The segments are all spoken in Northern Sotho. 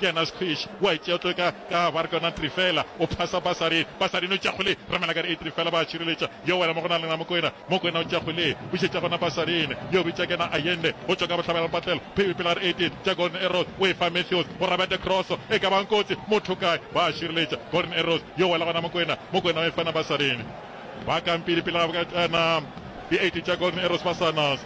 Kena Squish wa e tšea tlo ka ka ba re ke yona Trifela o phasa basari basari no tša kgole ramela ka re e Trifela ba tšireletša yo wena mo go na lena Mokwena Mokwena o tša kgole bušetša gona basarin yo bitša kena Ayende go tšwa ka bohlabela patlelo phebi pela re Edit tša Golden Arrows o e fa Matthews go rabete Cross e ka bang kotsi motho kae ba a šireletša Golden Arrows yo wela gona Mokwena Mokwena o e fana basarin ba kampiri pela ga boka tšana di 80 tša Golden Arrows ba sanas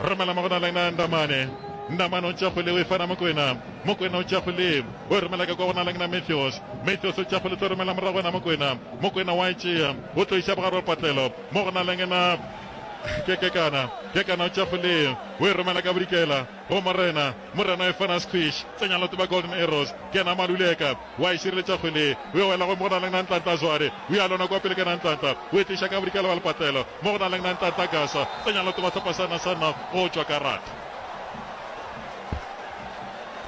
Romela mo go na le na Ndamane. Ndamane o tša go le o e fana Mokwena. Mokwena o tša go le o e romela ka kwa go na le na Matthews. Matthews o tša go le tlo romela morago go na Mokwena. Mokwena wa e tšea o tlo iša bogare wa patlelo mo go na le na Kekana. Kekana o tša go le o e romela ka bodikela go Morena. Morena o e fana Squish. Tsenya loto ba Golden Arrows. Kena Maluleka. O a e šireletša kgwele. O e wela gomme go na le Nantanta a Zware. O e alona kua pele ka Nantanta. O e tliša ka bodikela bja lepatlelo mo go na le Nantanta a Gasa. Tsenya letoba sehlopha sa Nasana go tšwa karate.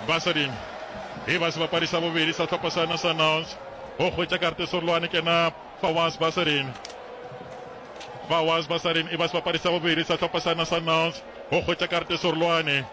Basading e ba sebapadi sa bobedi sa sehlopha sa Nasanals go hwetša karate serolwane ke na Fawaz Basadin. Fawaz Basadin e ba sebapadi sa bobedi sa sehlopha sa Nasanals go hwetša karate serolwane.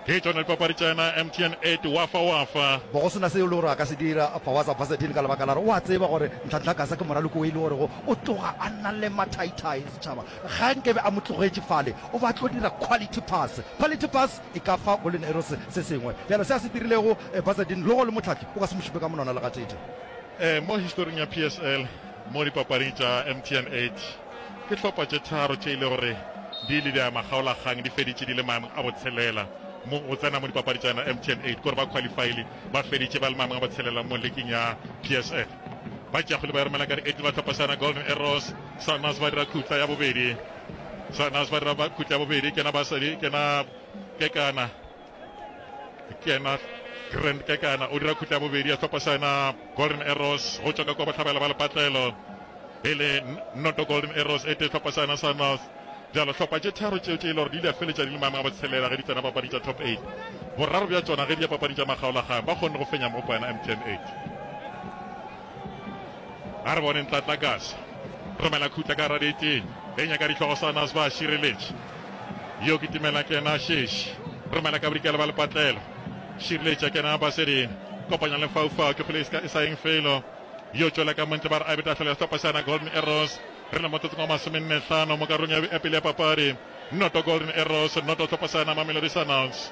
Ke tšona dipapadi tša yena MTN eight wafa wafa. Bo go se na seo e le gore a ka se dira Fawaza Basadini ka lebaka la gore o a tseba gore Nhlanhla Gasa ke moraloki o e le gorego o tloga a na le mathaithai go setšhaba. Ga nke be a mo tlogetše fale, o be a tlo dira quality pass. Quality pass e ka fa Golden Arrows se sengwe. Bjale se a se dirilego Basadini, logo le Mohlahli o ka se mo šupe ka monwana le gatee. Ee, mo historing ya PSL, mo dipapading tša MTN eight, Ke hlopha tše tharo tše e le gore di ile di a makgaolakgang di feditše di le maemong a botshelela mo go tsena mo dipapadi tša yona MTN 8. Ke gore ba khwalifaile ba feditše ba le maemong a botshelela mo liking ya PSL. Ba tšeago le ba Ermelakari Eagles ba tlhophašana Golden Arrows, Sundowns ba dira khutla ya bobedi. Sundowns ba dira khutla ya bobedi kena ba sadi kena kekana. kena grand kekana o dira khutla bobedi ya tlhopa sena golden arrows go tšwa ka kwa bohlabela ba lepatlelo e le noto golden arrows e te tlhopa sena sa north jalo tlhopa tše tharo tšeo tše e le gore di ile ya feletša di le maemong a botshelela ge di tsena papadi tša top 8 boraro bja tsona ge di ya papadi tša makgaolagang ba kgonne go fenya mo poena mtn 8 a re bone ntlatlakase romela khutla ka ra diteng e nyaka dihlogo sa nas ba šireletše yo ke timela ke yena šeši romela ka bodikela ba lepatlelo šireletša ke yena basedini kopanya le faufau ke kgole e sa eng felo yo tšwela ka montle ba re abeta fela sehlopha sa yona golden arrows re le motsotsong wa masomenne hlano mo karolong ya pele ya papadi noto golden arrows noto sehlopha sa yona mamelodi sunouts